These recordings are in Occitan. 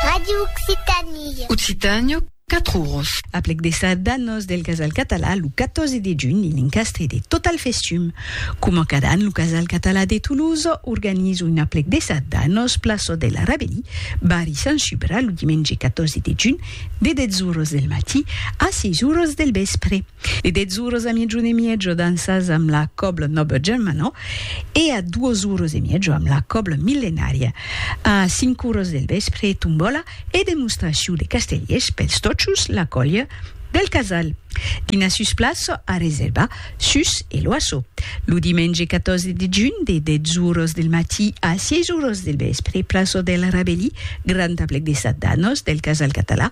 Radio Occitània. Occitània, 4 oros. Aplec de sardanos del Casal Català lo 14 de junh en l'encastre de Total Festum. Coma cada an lo Casal Català de Tolosa organiza un aplec de sardanos plaça de la Rabelí, barri Sant Subra lo dimenge 14 de junh de 10 oros del matí a 6 oros del vèspre. E dètz oros a miejon e miejo dansas amb la còbla Noble Germano e a duos oros e miejo amb la còbla Millenària. A cinc oros del vèspre, tombòla e demostracion de castellers pels tòchos la còlha del casal. Dinar sus plaça a reservar sus e l'oasso. Lo dimenge 14 de junh de dètz oros del matí a sièis oros del vèspre, plaça del Rabelí, grand aplec de sat danos del casal català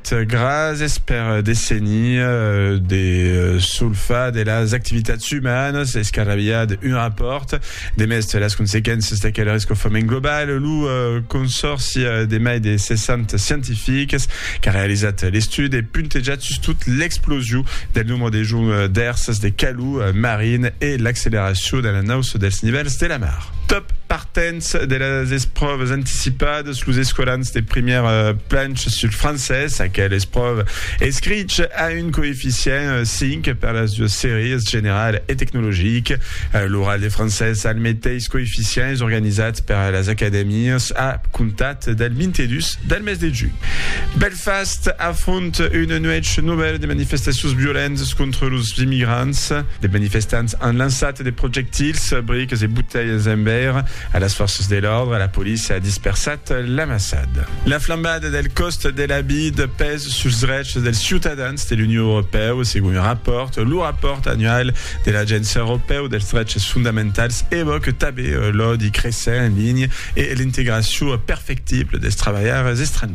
Gràcies per desenir de solfar de las activitats umanas escarrabilhar d'un rapòrt de mèste las consequéncias d'aquel rescofament global. Lo consòrci de mai de 60 scientifics qu'a realizat l'estudi e puntejat sustot l'explosiu del nombre de joncs d'èrsas de calor marin e l'acceleracion de l'anauça dels nivèls de la mar. Dens de las espròvas anticipadas, los escolans de primièr planch sul francés, aquel espròva escrich a un coeficient 5 per las duas sèries, general e tecnologic. L'oral de francés a al meteis coeficient, es organizat per las acadèmias a comptat del 22 del mes de junh. Belfast afronta Una nuèch novèla de manifestacions violentas contra los immigrants. De manifestants an lançat de projectils, briques e botelhas en veire a las fòrças de l'òrdre. La polícia a dispersat l'amassada. La flambada del còst de la vida pes suls drechs dels ciutadans de l'Union Europèu, segon un rapòrt. Lo rapòrt annual de l'Agéncia Europèu dels Drechs Fondamentals evòque tanben l'òdi cressent en linha e l'integracion perfectible dels trabalhaires estrangièrs.